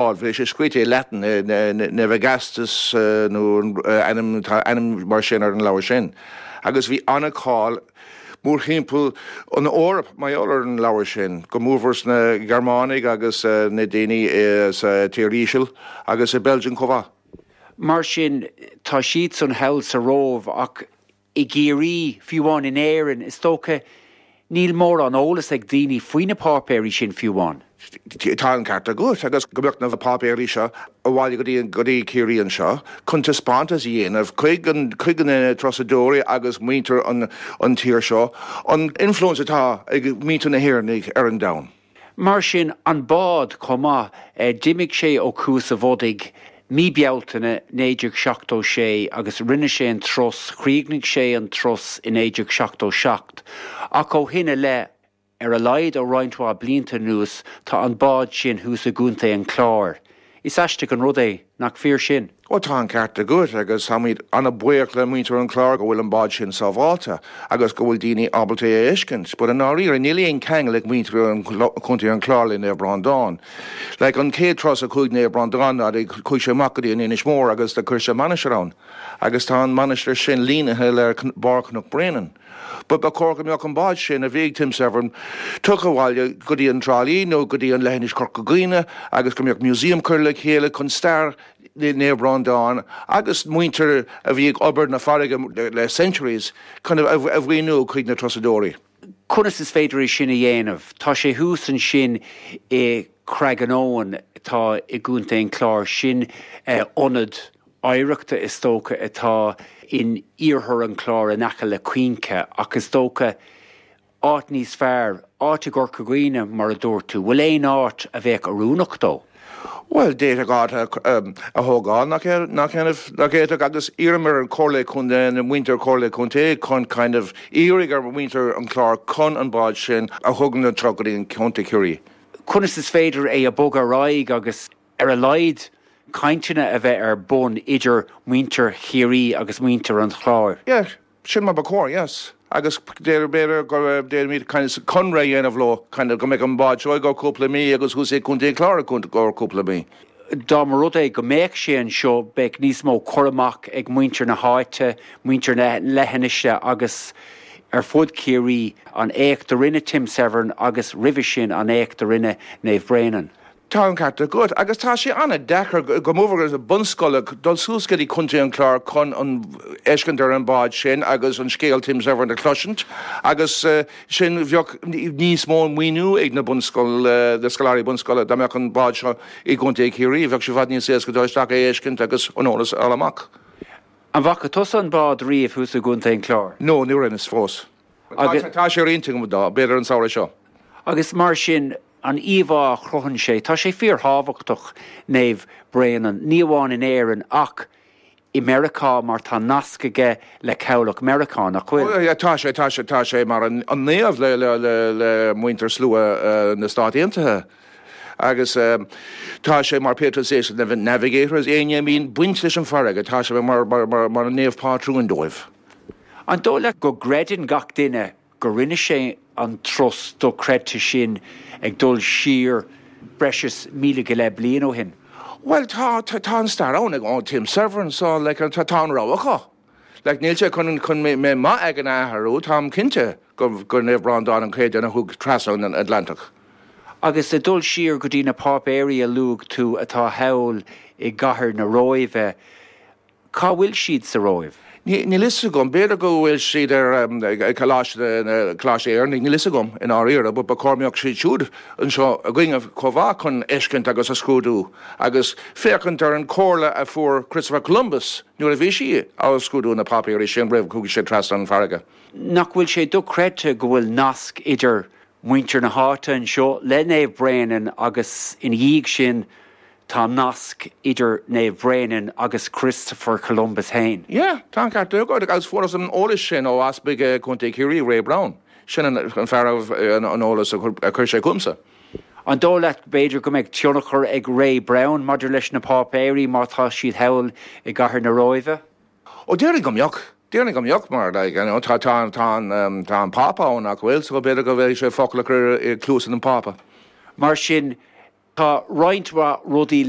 Bhí sé scríte i Latin, Navigatio nó ainm, tá ainm mar sin ar an leabhar sin. Agus bhí an-cháil mórthimpeall an Eoraip mar gheall ar an leabhar sin, go mór mór sna Gearmánaigh agus na daoine sa Tír Íseal agus i Belgium chomh maith. Mar sin, tá siadsan thall sa Róimh ach I gCiarraí, fiú amháin in Éirinn, is dócha, níl mórán eolas ag daoine faoi na páipéirí sin fiú amháin. Tá an ceart agat, agus go dtiocfadh na páipéirí seo abhaile go dtí Ciarraí anseo chun taispeántas a dhéanamh chuig na turasóirí agus muintir an tír seo an influence atá ag muintir na hÉireannaigh ar an domhan. Mar sin, an bád, chomh maith, d'imigh sé ó Chuas a' Bhodaigh mí Bealtaine 1976 agus rinne sé an turas, chríochnaigh sé an turas i 1977, ach ó shin i leith, ar a laghad ó roinnt mhaith blianta anuas, tá an bád sin thuas i gContae an Chláir. Is aisteach an rud é, nach fíor sin? Ó, tá an ceart agat, agus táimid an-bhuíoch le muintir an Chláir go bhfuil an bád sin sábháilte, agus go bhfuil daoine ábalta é a fheiscint. But i ndáiríre, níl aon ceangal ag muintir Chontae an Chláir le Naomh Breandán. Like, an chéad turas a chuaigh Naomh Breandán ann, chuaigh sé amach go dtí an Inis Mór agus do chuir sé mainistir ann, agus tá an mainistir sin línithe le barr Chnoc Bréanainn. But ba chóir go mbeadh an bád sin, a bhí ag Tim Severn, tugtha abhaile go dtí an Trá Lí nó go dtí an leithinis Chorca Dhuibhne agus go mbeadh museum curtha le chéile chun stair Naomh Breandán agus muintir a bhí ag obair na farraige le centuries chun a mhíniú chuig na turasóirí. Conas is féidir é sin a dhéanamh? Tá sé thuas ansin i Craggaunowen atá i gContae an Chláir, sin ionad oidhreachta is dócha atá in iarthar an Chláir in aice le Cuinche ach is dócha áit níos fearr, áit i gCorca Dhuibhne mar a dúirt tú. Bhfuil aon áit a bheadh oiriúnach dó? Bhuel, d'fhéadfadh áit a thógáil nach bhféadfadh agus iarraim ar Chomhairle Contae, ar mhuintir Chomhairle Contae chun kind of iarraidh ar mhuintir an Chláir chun an bád sin a thabhairt go dtí an Contae Chiarraí. Conas is féidir é a bhogadh ar aghaidh agus ar a laghad, cainteanna a bheith ar bun idir muintir Chiarraí agus muintir an Chláir. Yeah, sin mar ba chóir, yes. Agus b'fhéidir go bhféadfaimis kind of conradh a dhéanamh leo, kind of go mbeadh an bád anseo ar feadh cúpla mí agus thuas i gContae an Chláir ar feadh cúpla mí. Dá mba rud é go mbeadh sé anseo, bheadh níos mó cur amach ag muintir na háite, muintir na leithinise agus ar fud Chiarraí, an éacht a rinne Tim Severn agus roimhe sin an éacht do rinne Naomh Bréanainn. Tá an ceart agat, agus tá sé an-deacair, go mór mór do bhunscoileanna, dul suas go dtí Contae an Chláir chun an fheiscint ar an mbád sin agus an scéal Tim Severn a chloisint, agus sin bheadh níos mó maoiniú ag na bunscoil, na scoláirí bunscoile, dá mbeadh an bád seo i gContae Chiarraí, bheadh sé i bhfad níos éasca dul isteach é a fheiscint agus an eolas a fháil amach. An bhfaca tusa an bád riamh thuas i gContae an Chláir? No, ní raibh, fós. Agus. Tá sé ar intinn agam dul, b'fhéidir an samhradh seo. Agus mar sin, an íomhá a chruthaíonn sé, tá sé fíorthábhachtach, Naomh Bréanainn, ní amháin in Éirinn ach i Meiriceá mar tá nasc aige le cabhlach Meiriceá, nach bhfuil? Tá sé, tá sé, tá sé mar an naomh le muintir slua mara na Stát Aontaithe. Agus tá sé mar patron saint na navigators, éinne a mbíonn baint leis an bhfarraige, tá sé mar an naomh pátrúin dóibh. An dóigh leat go gcreideann gach duine go rinne sé an turas dochreidte sin ag dul siar breis is míle go leith bliain ó shin? Bhuel, tá, tá an stair ann, like, ó Tim Severn, so, like, tá, tá an rogha acu. Like, níl sé chun, chun mé, mé maith ag an athrú, táim cinnte go, gur Naomh Breandán an chéad duine a chuaigh trasna an Atlantach. Agus ag dul siar go dtí na páipéirí a luaigh tú atá thall i gcathair na Róimhe, Cá bhfuil siad sa Róimh? Níl fhios agam. B'fhéidir go bhfuil siad i gColáiste na nÉireannach, níl fhios agam i ndáiríre, but ba chóir go mbeadh siad siúd anseo againne chomh mhaith chun fheiscint agus a scrúdú agus féachaint ar an chomhairle a fuair Christopher Columbus nuair a bhí sé ag scrúdú na páipéirí sin roimh a chuaigh sé trasna an farraige. Nach bhfuil sé dochreidte go bhfuil nasc idir muintir na háite anseo le Naomh Bréanainn agus ina dhiaidh sin, Tá nasc idir Naomh Bréanainn agus Christopher Columbus fhéin. Yeah, tá an ceart agat, agus fuarthas an eolas sin ó Easpag Chontae Chiarraí, Ray Browne. Sin an fear a raibh an eolas a chuir sé chugamsa. An dóigh leat b'fhéidir go mbeidh tionchar ag Ray Browne maidir leis na páipéirí, má tá siad thall i gcathair na Róimhe? Ó, déarfainn go mbeadh. Déarfainn go mbeadh mar, like, you know, tá, tá, tá an, tá an Pápa ann, nach bhfuil, so b'fhéidir go bhféadfadh sé focal a chur i gcluasa an Phápa. Mar sin, tá roinnt mhaith rudaí le